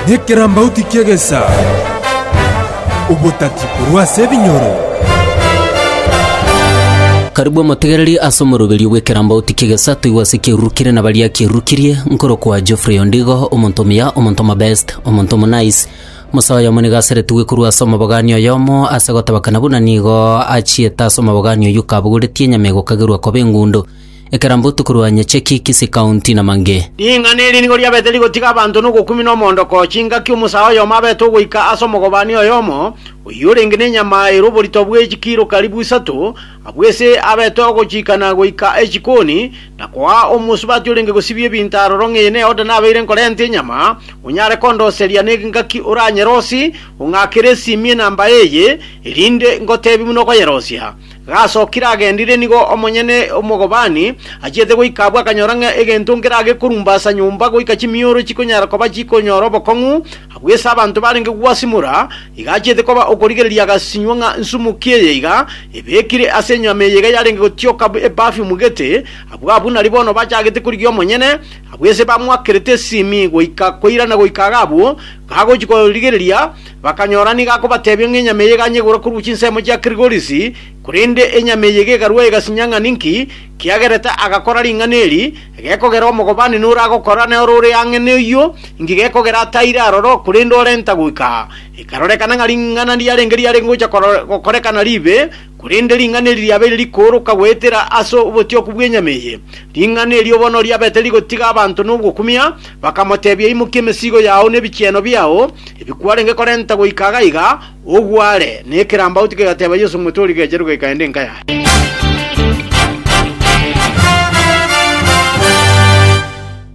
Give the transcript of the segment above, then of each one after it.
Nekerambauti ki'egesaa, obotati korwa ase ebinyoro. Karibu omotegereri ase omoroberio bw'ekerambauti ki'egesaa toigwe ase kiarurukirie na baria kiarurukirie, nkorokwa Geoffrey Ondigo, omonto omuya, omonto omobest, omonto omonice, mosae oyomo nigo aseretigwe korwa ase omobogani oyomo ase gotabakana buna nigo achiete ase omobogani oyio kabogoretie enyama egokagerwa koba engundo. Ekerambo Tokorwanye Cheki, Kisii County, na mangĩ. Ring'ana eri nigo riabete rigotiga abanto nogokumia na omoondoko, chingaki omosaa oyomo abete ogoika ase omogobani oyomo, oyio orenge nenyama ere oborito bwe chikiro karibu isato, abwo ise abete ogochiikana goika echikoni, na koaa omosubati orenge gosibia ebinto aroro ng'eye neoda nabeire nkorenta enyama, onyare kondoseria n'engaki oranyerosie, ong'akere esiimi enamba eye, erinde ngoteebie buna okoyerosia. Gasokire agendire nigo omonyene omogobani achiete goika abwo akanyora ng'a egento nkere agekorumba ase nyomba goika chimioro chikonyara koba chikonyora obokong'u, abwo ase abanto barenge gwasimora, iga achiete koba okorigereria agasinywa ng'a nsumuki eye iga ebekire ase enyama eye iga yarenge gotioka eperfume gete, abwo abwo nari bono bachagete korigia omonyene, abwo ase bamoakerete esimi goika koirana goika iga abwo gagochi korigereria Bakanyora nigo akobatebia ng'a enyama eye eganye igurwe korwa chinsemo chia Kirigorisi, korende enyama eye iga ekarua egasinya ng'a ninki kiagerete agakora ring'ana eri, gekogera omogobani nore agokora, na ore ore ang'e noyio inki gekogera ataire aroro, korende orenta goika aa. Ekarorekana ng'a ring'ana riarenge riarenge gocha gokorekana ribe. Korende ring'ana eri riabeire rikooroka goetera ase obotioku bw'enyama eye, ring'ana erio bono riabete rigotiga abanto nogokumia, bakamoteebia, Imokia emesigo yao na ebichieno biao ebi kwarenge korenta goika iga iga, ogware. Na ekerambauti kegateeba Yeso, Omote oria gecherwe gaikaende enka yaye.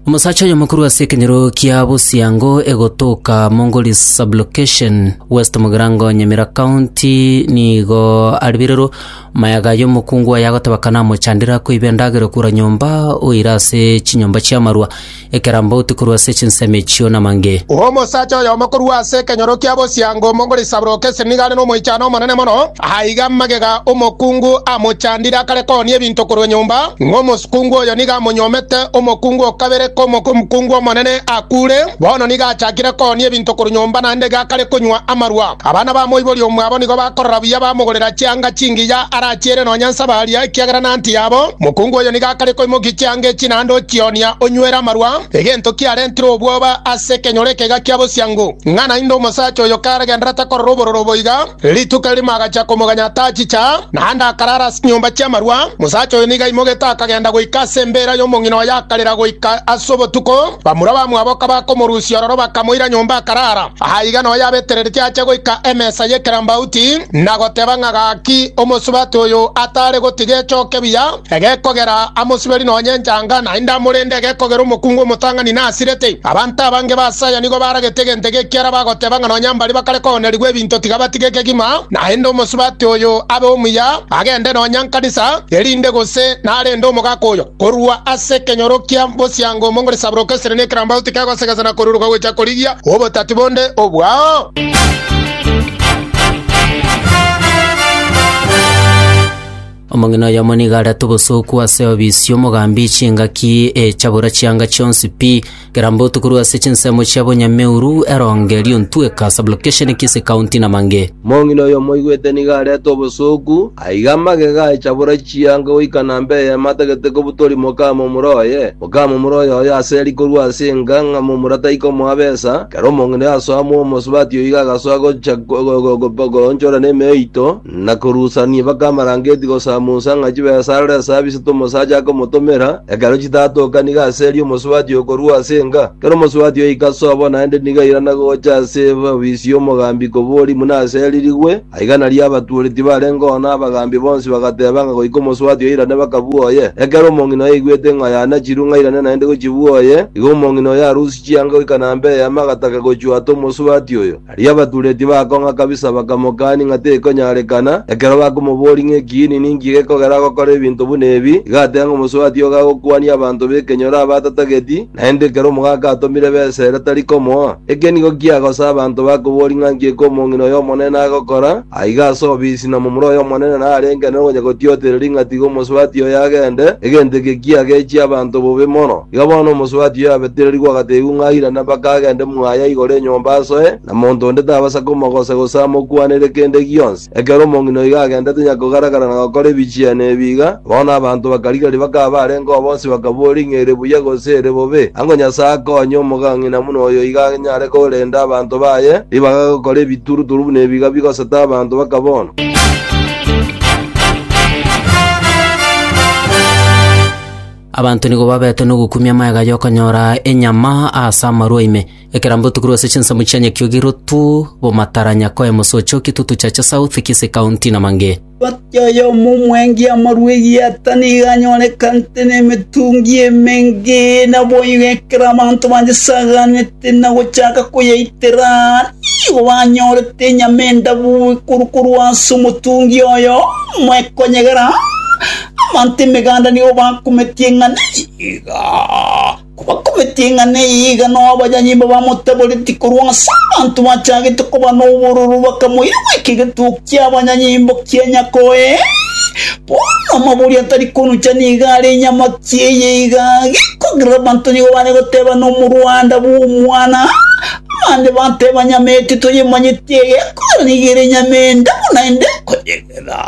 Omosacha oyomo korwa ase ekenyoro kia Bosiango egotoka Mongoli sublocation West Mugirango Nyamira County nigo aribirirwe mayaga y'omokungu oye agoteba kana amochandire akoiba endagera okura nyomba oire ase chinyomba chi'amarwa ekerambauti korwa ase chinsemo echio namange Omosacha oyomo korwa ase ekenyoro kia Bosiango Mongoli sublocation nigo are nomoichano omonene mono aiga magega omokungu amochandire akare koonia ebinto korwa nyomba ng'omosunte Omokungu oyo nigo amonyuomete omokungu o kabere k'omokungu omonene akure. Bono nigo achakire koonia ebinto korwa nyomba naende iga akare konywa amarwa. Abana ba moibori omwabo nigo bakorora buya bamogorera chianga chingiya arachiere nonya nsabaria, ekiagera nanti yabo. Omokungu oyo nigo akare koimokia chianga echi naende ochionia onywere amarwa, egento kiarentire obwoba ase ekenyoro eke iga kia bosiango, ng'a naende omosacha oyo karagenderera takorora obororo boiga. Rituko erimo agacha komoganya atachicha, naende akarara ase chinyomba chi'amarwa. Mosacha oyo nigo aimogete akagenda goika ase embeera y'omong'ina oye akarera goika ase obotuko. Bamura bamwabo kabakomorusia ororo bakamoira nyomba akarara. Aiga noyo abetereretie ache goika emesa y'ekerambauti, na goteba ng'a gaki omosubati oyo atare gotiga echoke buya. Egekogera amosiberi nonye enchanga, naende amorende egekogera omokungu omotang'ani nasirete. Abanto abange basaya nigo baragete egento eke ekiara bagoteba ng'a nonya mbaria bakare koonerigwa ebinto tiga batige ekegima, naende omosubati oyo abe omuya, agende nonya nkanisa, erinde gose narende omogaka oyo. Korwa ase ekenyoro kia bosiango omong'ori saburoka esere na ekerambagu tikegosegesa na koruruka gocha korigia obotati bonde obwao. Omong'ina oyomo nigo arete obosooku ase obisi omogambi chingaki e chabura chianga chionsi pi, keramba otukorwe ase chinsemo chia bonyameuru, eronge, riontweka, sublocation, kisi, county, na mange. Omong'ina oyomo oigwete nigo arete obosooku, aige amagega e chabura chianga goika namba eyemo atagete kobutori mokamomura oye, mokamomura oyoyo ase eri korwa ase enga ng'a momura taikomoa besa, ekero omong'ina oyo asoa moomosubati oiga agasoa gocha goonchora nemeyo eito, Na korusania mpaka amarangeti gosamusa ng'a chibesarore ase abisato omosacha akomotomera, ekero chitatoka nigo aserie omosubati okorua ase enga. Ekero omosubati oika sobo naende nigo airana gocha ase ofisi y'omogambi kobori buna aseririgwe, aiga nario abatuori tibarenge oo na abagambi bonsi bagateba ng'a goika omosubati oirane bakabua oye. Ekero omong'ina oyaigwete ng'a yanachirwe ng'a airane naende gochibua oye, igo omong'ina oyo arusie chianga goika nambe eyemo agataka gochwata omosubati oyo. Erio abatureti bakong'a kabisa bakamokania ng'a tekonyarekana, ekero bakomoboria ng'a ekiini ninki gekogera agokora ebinto buna ebi, iga ateba ng'a omosubati ogo agokwania abanto b'ekenyoro abatatageti, naende ekero omogaka atomire b'esere tari komoa. Eke nigo kiagosa abanto bakoboria ng'a nki ekomong'ina oy'Omonene agokora, aiga ase obisi na momura oy'Omonene narenge nere onye gotiotereria ng'a tiga omosubati oyo agende, egento eke kiagechie abanto bobe mono. Iga bono omosubati oyo abetererigwe agateebigwa ng'a airane mpaka agende mwaya igoro enyomba asoe, na monto onde tabasa komogosa gose amokwanere kende gionsi. Ekero omong'ina oigo agendete nyakogaragara na gokora ebichiani ebi iga, bono abanto bakarigeria bakaba barenge oo bonsi bakaboria ng'a ere buya gose ere bobe. Ango Nyasae akonye omogang'ina buna oyo iga anyare korenda abanto baye ribaga gokora ebituruturu buna ebi iga bigosete abanto baka bono. Abanto nigo babete nogokumia magega y'okonyora enyama ase amarwa ime. Ekera mbotukorwa ase chinsemo chia Nyakiogi, Rotu, Bomatara, Nyakoe, Mosocho, Kitutu, Chacha South, Kisii County na mangĩ. Omotienyi oyomo omwengi amarwa egieta nigo anyorekanete nemetungi emenge, naboigo ekero abanto bayesaganete na gochaka koyeitera, nigo banyorete enyama endabu korwa ase omotungi oyomo ekonyegera. Abanto emeganda nigo bakometie ng'a neyiga, kobakometie ng'a neyiga noabanyanyimbo bamotaboreti korwa ase abanto bachagete koba nobororo bakamoira goika egetugo ki'abanyanyimbo kia nyako ee. Bono amabori atari konucha nigo are enyamaki eye iga, gekogerera abanto nigo bare goteba nomorwanda bw'omwana, abande bateba nyama eye titoyemanyeti eye ekogerera nigo ere nyama ende buna ende ekoyegera.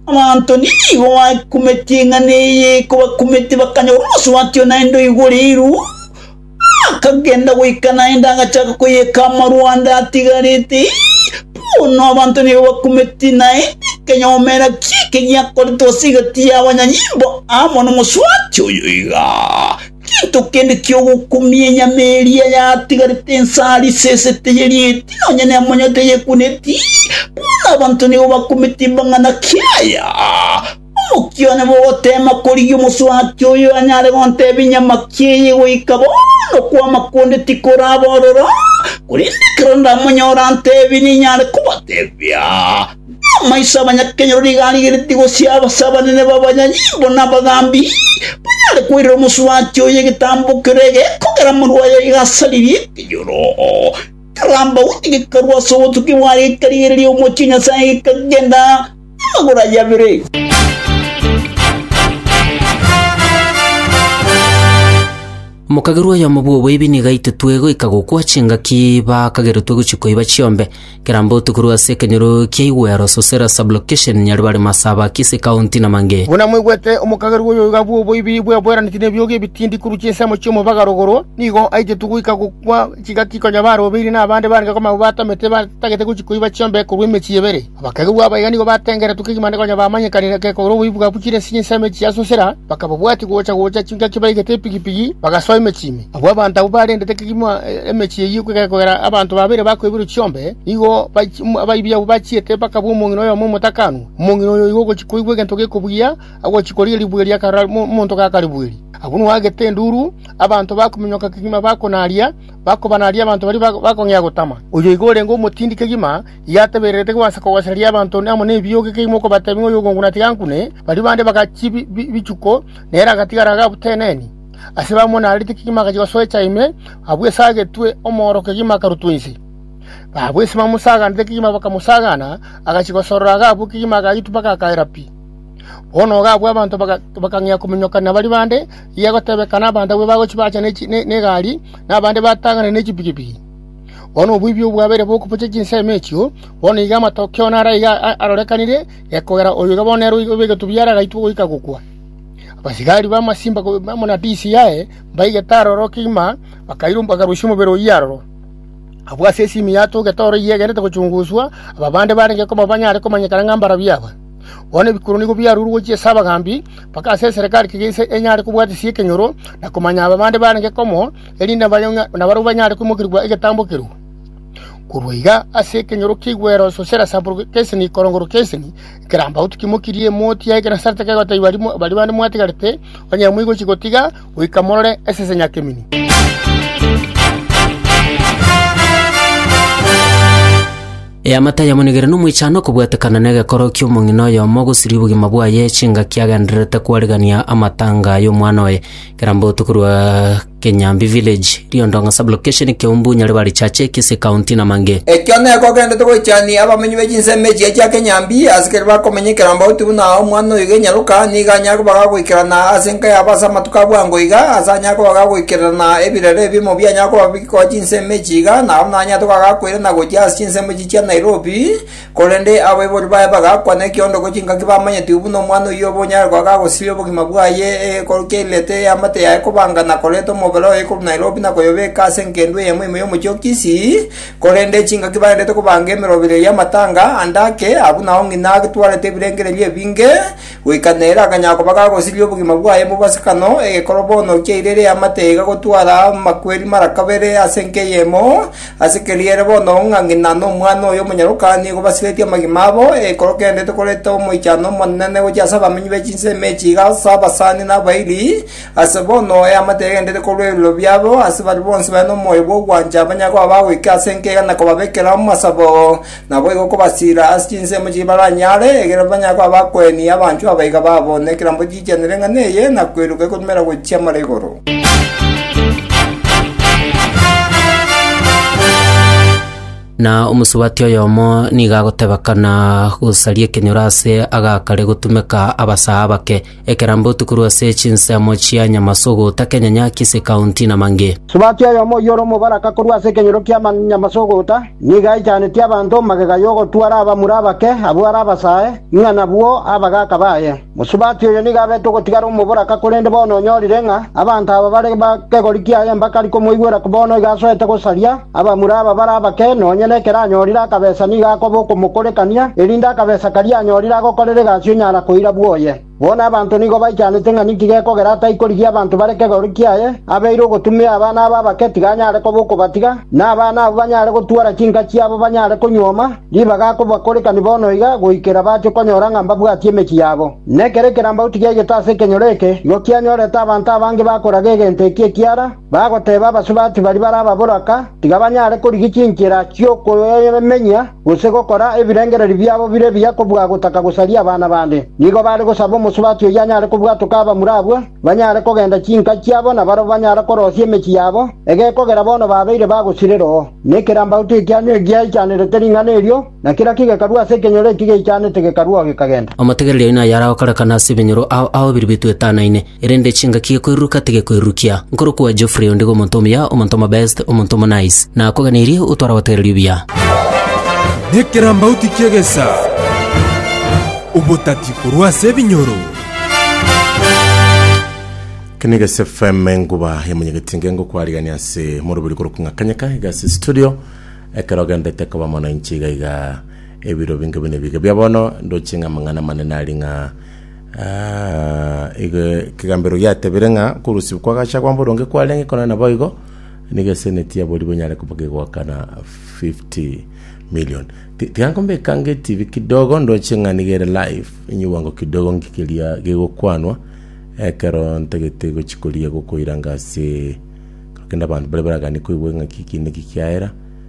Abanto nigo bakumete eng'ana eye, kobakumete bakanyora omosubati one naende oigoreirwe, akagenda goika naende agachaka koyeka amarwande atigarete, bono abanto nigo bakumete naende ekenyoma era ki'eke giakorete gose egati y'abanyanyimbo amo nomosubati oyo igaa. Gento kende ki'ogokumia enyama eria yatigarete ense aria isese teyerieti, nonya nemonyo teyekuuneti, bono abanto nigo bakumete ebang'ana kiaya. Omokia one bogoteema korigia omosubati oyo anyare gontebia enyamaki eye goika bono, okwama konde tikoraba ororo, korende ekero ndamonyore antebie ninyare kobatebia. Amaiso abanyakenyoro nigo arigeretie gosiaba ase abanene b'abanyanyimbo na abagambi, banyare koirera omosubati oye egetambo kere egeeko ekero amarwa aye agasaririe ekenyoro. Ekerambauni gekarua ase obotuki bwaye gekarigereria omochie Nyasae gekagenda namagoro aye abere. Mokagerwa oyomo bw'oboibi nigo aititwe goika gokwa chingaki bakageretwe gochia koiba chiombe. Kera mbotu korwa ase ekenyoro kia Igwero, Sosera Sublocation, Nyaribari, Masaba, Kisii County na mangĩ. Buna mwaigwete, omokagerwa oyo iga bw'oboibiri bweboraneti nebiogi ebitindi korwa chinsemo chi'omobaga rogoro, nigo aitetwe goika gokwa chigati konya barobeire nabande barenge komama batamete batagete gochia koiba chiombe korwa emechie ebere. Abakagerwa aba iga nigo batengeretwe kegima konya bamanyekanire gekogera oboibi bwa buchire ase chinsemo echi chia Sosera, bakababwatia gocha-gocha chingaki baigete epigipigi, bagasoa emechie ime. Abwo abanto abwo barendete kegima emechie eyio kogera abanto babere bakoiborwa chiombe, nigo abaibi abwo bachiete bakabua omong'ina oyomo omotakanwa. Omong'ina oyo oigo ogochia koigwa egento gekobugia, agochia koria ribuge riakarora omonto gakaribueri. Abwo nwagete enduru, abanto bakominyoka kegima bakonaria, bakobanaria abanto baria bakong'ea gotama. Oyo oigo orenge omotindi kegima, igo atebererete gwansa kogosereria abanto amo nebiogi kegima okobatebia ng'a oyogongu natiga ankune, baria bande bagachiia bichuko, nere agatigara agabuteneni. Ase bamonarete kegima agachia gosoa echa ime, abwo esagetwe omooro kegima akarutwa inse. Abwo ase bamosaganete kegima bakamosagana, agachia gosorora iga abwo kegima agaitwa mpaka akaera pi. Bono iga abwo abanto bakang'ea kominyoka nabari bande, eria egotebekana abanto abwo bagochia baacha negari, na abande batang'ane ne chipigipigi. Bono oboibi obwabeire bokobochia chinsemo echio, bono iga amatokeo naro aiga arorekanire, gekogera oyo iga bono nere oibegetwe buya ere agaitwa goika gokwa. Abasigari b'amasimba amo na tisi yaye mbaigete aroro kegima, bakarusia omobere oyio aroro. Abwo ase esimi yatogete oro eyio egenderete gochunguswa, aba bande barenge koma banyare komanyekana ng'a mbarabwo aba. Bono ebikuro nigo biarure gochia ase abagambi, mpaka ase eserekari kegese enyare kobwatisia ekenyoro, na komanya aba bande barenge komo, erinde nabarabwo banyare koimokerigwa egetambo ekeruu. Korwa iga ase ekenyoro kiaigwere Sosera Sampuru Kesini korongorwa Kesini, Ekerambau tikimokirie motiga ekero nasarete kegotebiwa baria bande mwatigarete, onye moigochi gotiga goika morore esese nyakemeni. Eamate ayamonigere nomoichano okobwatekana negekoro ki'omong'ina oyomo gosiria obogima bwaye chingaki agendererete kwarigania amatanga ay'omwana oye. Ekerambau tokorwa Kenyambi Village, Riondong'a Sub-Location, Keumbu, Nyaribari Chache, Kisii County na mangĩ. Ekio neko ogendete goichania abamenyi be chinsemo echi chia Kenyambi, ase keria bakomenyekera mbauti buna omwana oyoiga enyaroka, nigo anyare koba gagoikerana ase enka yabo ase amatuko a bwango iga, ase anyare koba gagoikererana ebirero ebimo bianyare koba bigoa chinsemo echi iga, nabo naranyare toka gakoirana gochia ase chinsemo echi chia Nairobi, Korende abaibori baye bagakwa nekiondoko chingaki bamanyetigwe buna omwana oyio obe onyare goaka agosiria obogima bwaye egekoru ki'erirete y'eamate yaye kobanga na koreta omobere oye korwa Nairobi na koyobeka ase engendu eyemo ime y'omochie o Kisii, korende chingaki bagenderete kobanga emeroberio y'amatanga ande ake, abwo nao ng'ina agetwarete ebirengererio ebinge, goika nere akanyara koba gagosiria obogima bwaye mobwasikano, egekoro bono kiairire eamate iga gotwara amakweri mara kabere ase enka eyemo, Ase keria ere bono ng'a ng'ina na omwana oye omonyaroka nigo basiretie amagima abo, ekero kendete koreta omoichano omonene gochia ase abamenyi be chinsemo echi iga ase abasani na abairi, ase bono eamate egendete korwa ebiroro biabo, ase baria bonsi bare nomoyo bw'ogwancha banyare koba bagoika ase enka iga na kobabekera amasabo. Naboigo kobasiira ase chinsemo chiria baranyare, ekiagera banyare koba abakueni abanchwa abaiga babo, na ekerambe chiichanere eng'ana eye, na kweruka ekorumera gochia mare igoro. Na omosubati oyomo nigo agotebekana gosaria ekenyoro ase agakare gotumeka abasaa abake, Ekerambe otukorwe ase chinsemo chia Nyamasogo, Takenyanya, Kisii County, na mang'e. Subati oyomo oyio ore omobaraka korwa ase ekenyoro kia Nyamasogota nigo aichaneti abanto magega y'ogotwara abamura abake abwo are abasae, ng'a nabwo abagaaka baye. Mosubati oyo nigo abete ogotigara omoboraka korende bono onyorire ng'a abanto aba bare bakegori kiaye mbakari komoigwera bono iga asoete gosaria. Abamura aba bare abake, nonya nekero anyorire akabesa nigo akoba okomokorekania, erinde akabesa karia anyorire agokorere egasi onyara koira bwoye. Bono abanto nigo baichanete ng'a ninki gekogera ataikorigia abanto bare kegoori kiaye, abeire ogotumia abana abo abake tiga anyare koba okobatiga, na abana abwo banyare gotwara chinka chiabo banyare konyuoma, ribaga akobakorekani bono iga goikera bache konyora ng'a mbabwatie emechie yabo. Nekero ekerambagu tigiaigete ase ekenyoro eke, igo kianyorete abanto abange bakoraga egento eki ekiara, Bagoteeba abasubati baria bare ababoraka tiga banyare korigia chinchera chi'okoyemenya gose gokora ebirengererio biabo bire ebiya kobua gotaka gosaria abana bande. Nigo baare gosaba omosubati oyio anyare kobwatoka abamura abwo, banyare kogenda chinka chiabo na barabwo banyare korosia emechie yabo, egekogera bono babeire bagosirera oo. Na ekerambaoto ekia nigo giaichanerete ring'ana erio, na kera kigekarua ase ekenyoro eki geichanete gekarua oo gekagenda. Omotegereri oino nayare agokorekana ase ebinyoro ao ao biri bitwetanaine. Erinde chingaki koiruruka tigekoirurukia. Nkorokwa Geoffrey ondigo omonto omuya, omonto omobest, omonto omonice. Nakoganeiri otwaragoteererio buya. Nekerambauti ki'egesaa, obotati korwa ase ebinyoro. Keniges FM enguba ya munyegetinga engokwariania ase morobiri korokwa ng'a kanyeka iga ase studio ekero ogendete koba mono inche iga iga ebiro binge buna ebiga bia bono ndoche ng'a amang'ana amanene ari ng'a Ah, ege- ekegambero giatebire ng'a korosibwa kw'agachagwa mboronge kwarenge kona naboigo nigo eseneti ya boribwe enyare koba gegoakana 50 million Ti- tiga nkombeka nge tv kidogo ndoche ng'a nigo ere live enyigwango kidogo nki keria gegokwanwa ekero ntagete gochi koria gokoiranga ase korokende abanto baria baragani koigwa ng'a kiki niki kiaera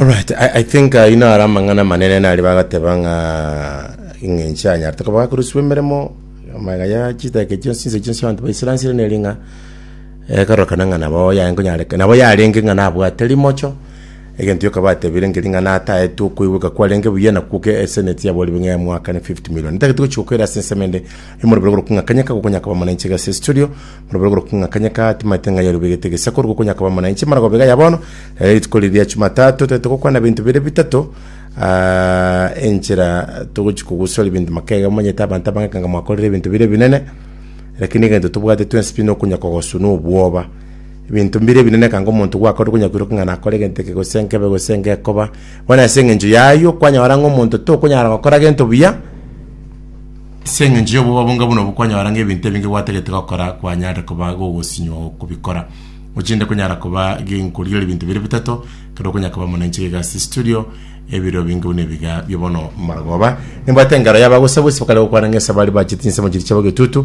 Alright, I, I think ayio naro amang'ana amanene nari bagateba ng'a eng'encho anyarete koba gakoruswa emeremo amaya ya chitake chionsi chinse chionsi abanto baisiransire neri ng'a ekorokana ng'a nabo yaye nkonyareka nabo yarenge ng'a nabwate rimocho Egento gioka batebire nkeri ng'a nataete okoigweka kwarenge buya na kwoke eseneti yaboribwe ng'a yamoakane 50 million. Ntagete gochia gokoira ase ensemo ende y'omorobero korokwa ng'a Kanyaka gokonya koba mwananchi iga ase estudio. Omorobero korokwa ng'a Kanyaka timaete ng'a yarue begete egesa koru gokonya koba mwananchi mara goba iga ya bono. Rero rituko riria ria Jumatatu totagete gokwana ebinto bire bitato aa enchera togochia kogusora ebinto makega omanyete abanto abange ekanga mwakorire ebinto bire ebinene. Lakini egento tobwate twensi pi nokonya kogosunwa obwoba. Ebinto mbire ebinene ekanga omonto gwakorire konya koiroka ng'a nakore egento eke gose nkebe gose ngekoba. Bono ase eng'encho y'ayio kwanyora ng'a omonto tokonyara gokora gento buya ase eng'encho y'obobabu onga buna obwo kwanyora ng'a ebinto ebinge gwatagete gokora kwanyarire koba gogosinywa kobikora. Ochende konyara koba gi- nkorigereria ebinto bire bitato ekero okonya koba muna inche gigasi studio ebiro binge buna ebiga bio bono. Marogoba nimbwate engaro y'abagosagosi bakare gokwana ng'a esabari bachete chinsemo chiria chiabo getutu,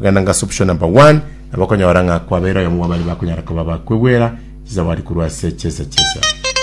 Ogenda ngase option number one, nabo okonyora ng'a kwabeire oyomo bwa baria bakonyara koba abakwegwera chizawadi korwa ase chiesa chi'esegi.